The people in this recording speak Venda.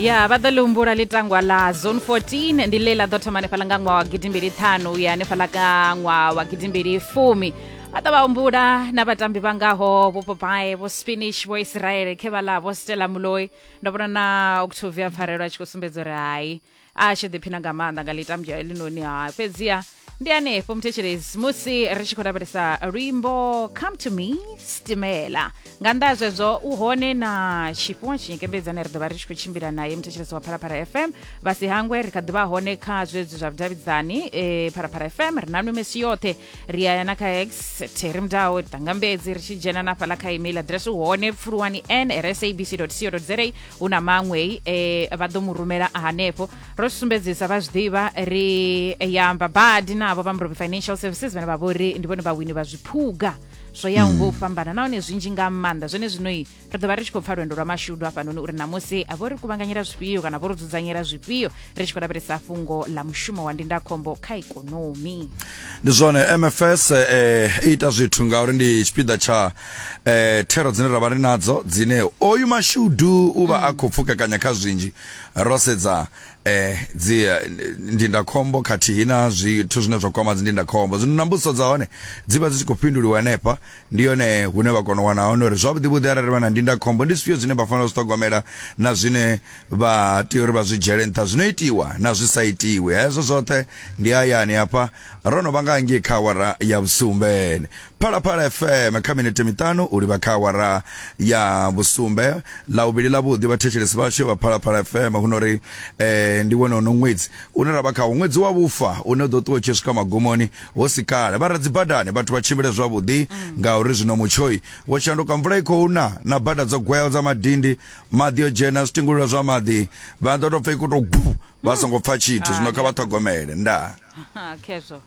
ya vha ḓo ḽi humbula ḽitangwa ḽa zone 14 ndi ḽe ḽa ḓo thoma hanefhaḽa nga ṅwaha wa gidimbili ṱhanu u ya hanefhaḽa ka ṅwaha wa gidimbili fumi vha ḓo vha humbula na vhatambi vha ngaho vho popae vho spinish vho israele khe vha ḽa vho stela muloi ndo vhona na octavia pfarelo a tshi khou sumbedza uri hai a tshi ḓiphina nga maanḓa nga ḽitambwa elinoni ha fhedziha ndi hanefho muthetshelezi musi ri tshi khou lavhelesa luimbo come to me stimela nga nnḓa ha zwezwo u hone na tshifhiwa tshinyekembedzane ri ḓovha ri tshi khou tshimbila naye muthetshelesi wa phalaphala fm vha si hangwe ri kha ḓivha hone kha zwezwi zwa vhudavhidzani e phalaphala fm ri na nwe mesi yoṱhe ri aya na kha x theri mudawo ri tanga mbedzi ri tshi dzhena na fhaḽa kha email address hone pfuluwani n sabc co za hu na maṅwei e vha ḓo mu rumela hanefho ro zwi sumbedzisa vha zwi ḓivha ri ya amba badi navho vha murobi financial services vhane vha vhori ndi vhone vhawini vha zwiphuga zwo yaho ngo u fhambana nahone zwinzhi nga maanḓa zwene zwino ri ḓo vha ri tshi khou pfa lwendo lwa mashudu hafhanoni uri ṋamusi vho ri kuvhanganyela zwifhio kana vho ri dzudzanyela zwifhio ri tshi khou lavhelesa fhungo ḽa mushumo wa ndindakhombo kha ikonomi ndi zwone mfs eh, i ita zwithu ngauri ndi tshipiḓa tsha eh, thero dzine ra vha ri nadzo dzine oyu mashudu u vha a khou pfukekanya kha zwinzhi ro sedza eh, dzi eh, ndindakhombo khathihi na zwithu zwine zwa kwama dzi ndindakhombo zwino na mbudziso dza hone dzi vha dzi tshi khou fhinduliwa henefha ndi yone hune vha kona u wana hone uri zwavhuḓi vhuḓi arali vha na ndindakhombo ndi zwifhio zwine vha fanela u zwi ṱhogomela na zwine vha tea uri vha zwi dzhiele nṱha zwino itiwa na zwi sa itiwi hezwo zwoṱhe ndi hayani hafha ro no vha nga ngei kha awara ya vhusumbe phalaphala fm kha minete miṱanu u livha kha awara ya vhusumbe ḽa vhuvhili ḽa vhuḓi vhathetshelesi vhashu vha phalaphala fm hu no ri eh, ndi wone uno ṅwedzi une ra vha khawo ṅwedzi wa vhufa une u ḓo ṱuwa u tshi swika magumoni Hu si kale vha re dzibadani vhathu vha tshimbile zwavhuḓi ngauri zwino mutshoi wo shanduka mvula i khou na na bada dzo gweaho dza madindi maḓi o dzhena zwitingulula zwa maḓi vha ḓo tou pfa i khou tou bu vha songo pfa tshithu zwino kha vha ṱhogomele ndaa Ha, khezwo.